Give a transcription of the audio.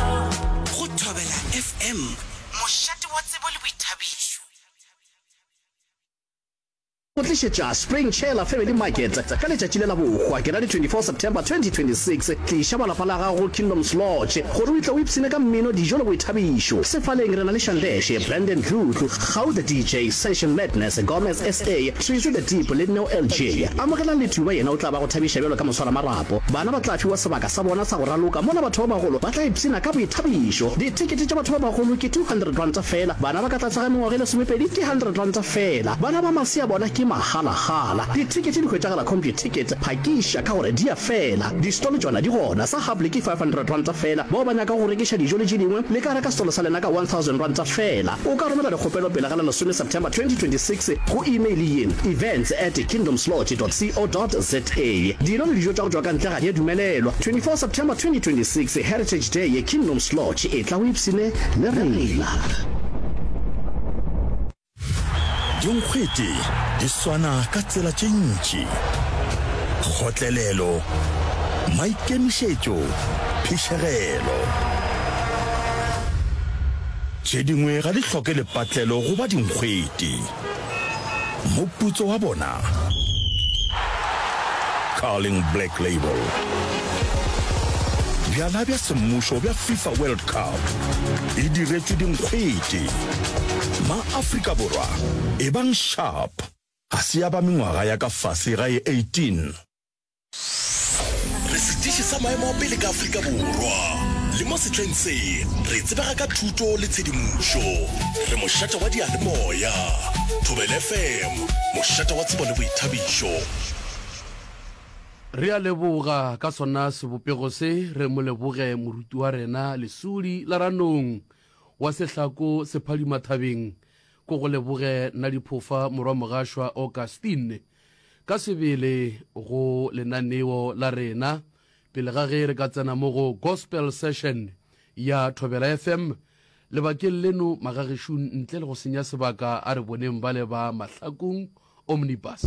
Go Thobela FM, mošate wa tsebo le boithabišo. Go tlišetša Spring Chela Family Market ka letšatši le la bohwa, ke ra di 24 September 2026. Tliša ba lapa la gago Kingdoms Lodge gore o itle o ipshine ka mmino, dijo le boithabišo. Sefaleng re na le Shandeshe, Brandon Dludlu, Kgau the DJ, Session Madness, Gomez SA, Trezo the Deep le Neo LJ. Amogelang le Tuba yena o tla ba go thabiša bjalo ka moswaramarapo. Bana ba tla fiwa sebaka sa bona sa go raloka mola batho ba bagolo ba tla ipshina ka boithabišo. Dithekete tša batho ba bagolo ke R200 feela, bana ba ka tlase ga mengwaga e lesomepedi ke R100 feela, bana ba masea bona ke magalagala. Dithekete di hwetšagala Computicket, phakiša ka gore di a fela. Distolo tšona di gona, sa Hable ke R500 feela, bao ba nyakago go rekiša dijo le tše dingwe le ka reka setolo sa lena ka R1000 feela. O ka romela dikgopelo pele ga la lesome September 2026 go email ye, events at kingdomslodge.co.za. Tee, Dino le dijo tša go tšwa ka ntle ga di a dumelelwa. 24 September 2026 Heritage Day ye Kingdoms Lodge e tla o ipshine le rena. Dinkgwete di swana ka tsela tše ntši, kgotlelelo, maikemišetšo, phišegelo. Tše dingwe ga di hloke lepatlelo go ba dinkgwete. Moputso wa bona. Carling Black Label. Bjala bja semmušo bja FIFA World Cup e diretšwe dinkgwete. Ma-Afrika Borwa ebang sharp. Ga se ya ba mengwaga ya ka fase ga e 18. Re setiši sa maemo a pele ka Afrika Borwa, le mo sehleng se re tsebega ka thuto le tshedimošo. Re mošate wa diyalemoya, Thobela FM, mošate wa tsebo le boithabišo. Re a leboga ka sona sebopego se, re mo leboge moruti wa rena lesudi la ranong wa sehlako sephadimathabeng, ko go leboge Nadiphofa morwa Mogašwa Augustine. Ka sebele go lenaneo la rena pele ga ge re ka tsena mo go Gospel Session ya Thobela FM lebakeng leno, Magagešung ntle le go senya sebaka a re boneng bale ba Mahlakong Omnibus.